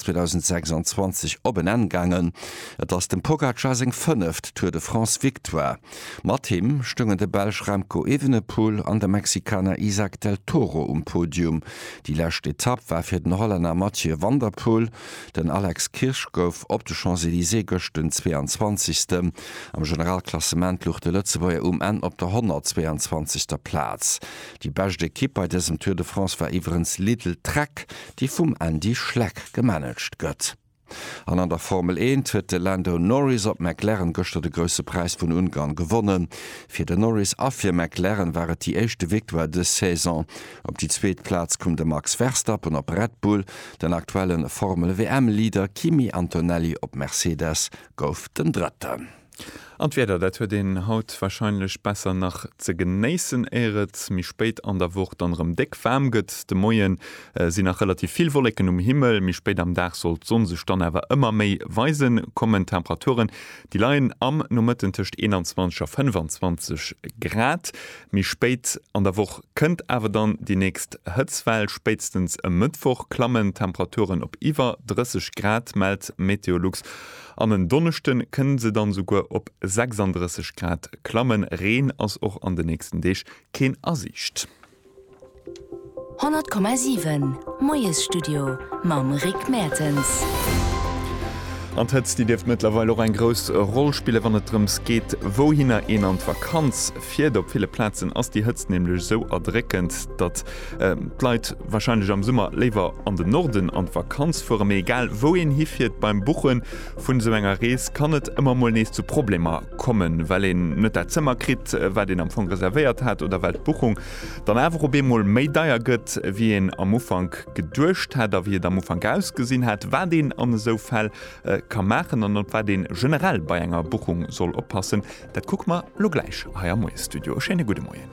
2026 op en Enn gaangen. Et ass dem Pogacar seng fënneft Tour de France Victoire. Mat him stoungen de Belsch Remco Evenepoel an de Mexikaner Izack del Toro um Podium. Déi lescht Etapp war fir den Hollänner Mathieu van der Poel. Den Alex Kirsch gouf op de Champs-Elysées gëscht den 22. Am Generalklassement luch de Lëtzebuerger um Enn op der 122. Plaz. Déi bescht Ekipp bei dësem Tour de France war iwwerens Lidl-Trek. déi vum Andy Schleck gemanagt gëtt. An an der Formel Eent huet de Lando Norris op McLaren gëschter de Grousse Präis vun Ungarn gewonnen. Fir de Norris a fir McLaren war et déi éischte Victoire dës Saison. Op déi zweet Plaz koum de Max Verstappen op Red Bull. Den aktuelle Formel-WM-Leader Kimi Antonelli op Mercedes gouf den Drëtten. An d'Wieder, dat huet een haut wahrscheinlech besser nach ze genéissen, éier et méi spéit an der Woch dann erëm déck waarm gëtt. De Moie sinn nach relativ vill Wolleken um Himmel, méi spéit am Dag soll d'Sonn sech dann awer ëmmer méi weisen kommen. D'Temperaturen, déi leien am Nomëtten tëscht 21 a 25 Grad. Méi spéit an der Woch kënnt awer dann déi nächst Hëtztwell, spéitstens e Mëttwoch klammen d'Temperaturen op iwwer 30 Grad, mellt Meteolux. An en Donneschde kënne se dann esouguer op 36 Grad klammen. Reen ass och an de nächsten Deeg keen a Siicht. 100,7 Moiesstudio mam Rick Mertens. An d'Hëtzt, déi dierft mëttlerweil och eng grouss Roll spillen, wann et drëms geet, wouhinner een an d'Vakanz fiert. Op ville Plazen ass déi Hëtzt nämlech esou erdréckend, datt D'Leit warscheinlech am Summer léiwer an den Norden an d'Vakanz fueren, mee egal wou een hifiert, beim Buche vun esou enger Rees kann et ëmmer mol nees zu Problemer kommen, well een net dat Zëmmer kritt, wat een am Fong reservéiert hat oder well d'Buchung dann awer op eemol méi deier gëtt, wéi een am Ufank geduecht hat a wéi et am Ufank ausgesinn hat. Wat een an esou Fäll ka maachen an op wat ee generell bei enger Buchung soll oppassen, dat kucke mer elo gläich hei am Moie-Studio. E schéine gudde Moien.